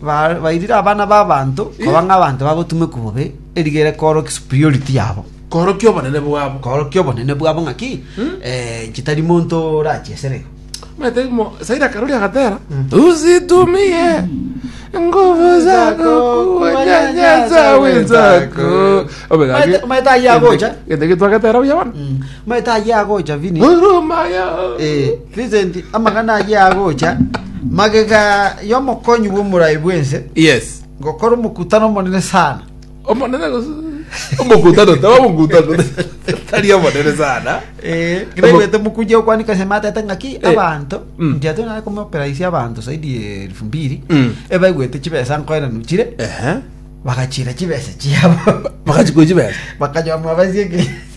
Bairire abana b'abanto koba ng'abanto bagotumekwa bobe, eriga ere koorokia superiority yabo, Koorokia obonene bwabo. koorokia obonene bwabo ng'aki eh, inche tari monto orachia esere iga. Omanyete mo Saira Karuri agatera usitumie nguvu zako kuwanyanyasa wenzako. Omanyete- omanyete ayia agocha? Gento eki twagetera buya bono. Amaeta ayio agocha, Vini. Eh, Vincent, amang'ana ayio agocha, magega y'omokonyi bw'omorai bw'ense, Yes. ngokora omokutano omonene sana. Omonene gose omokutano taba omokutano tari omonene sana. Eh, Omo- ngenaigwete omokunja okwanika ase matete ng'aki Eh. abanto, Mm. inche atoe nare komoperaisia abanto zaidi ya elfu mbili, Mm. ebaigwete chibesa nkoenanu chire, Ehe. bagachira chibesa chiabo. Bakachi gochi besa. Bakanywa mwabasie ki?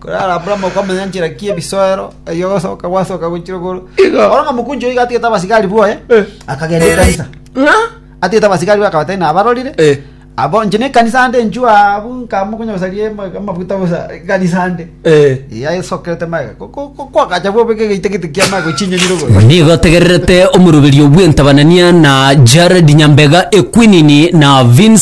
Korende Abrahamu akamanya enchera ki ebisoero, erio gosoka gwasoka gochire igoro. Igo. Oro ng'a mokunchu oiga atigete abasigari boye, Eh. akagenda ekanisa. Ng'a? Atigete abasigari boye akabata ina abarorire. Eh. Abo inche ne ekanisa ande inchu abu nkamokonya gosaria ama- amafuta bosa ekanisa ande. Eh. Yaesokerete maega. Ko- ko- ko- Kwakacha bobeka egeita gete kia maega ochinyanyire igoro. nigo ategererete omoroberio bw'entabanania na jared nyambega equinini na vince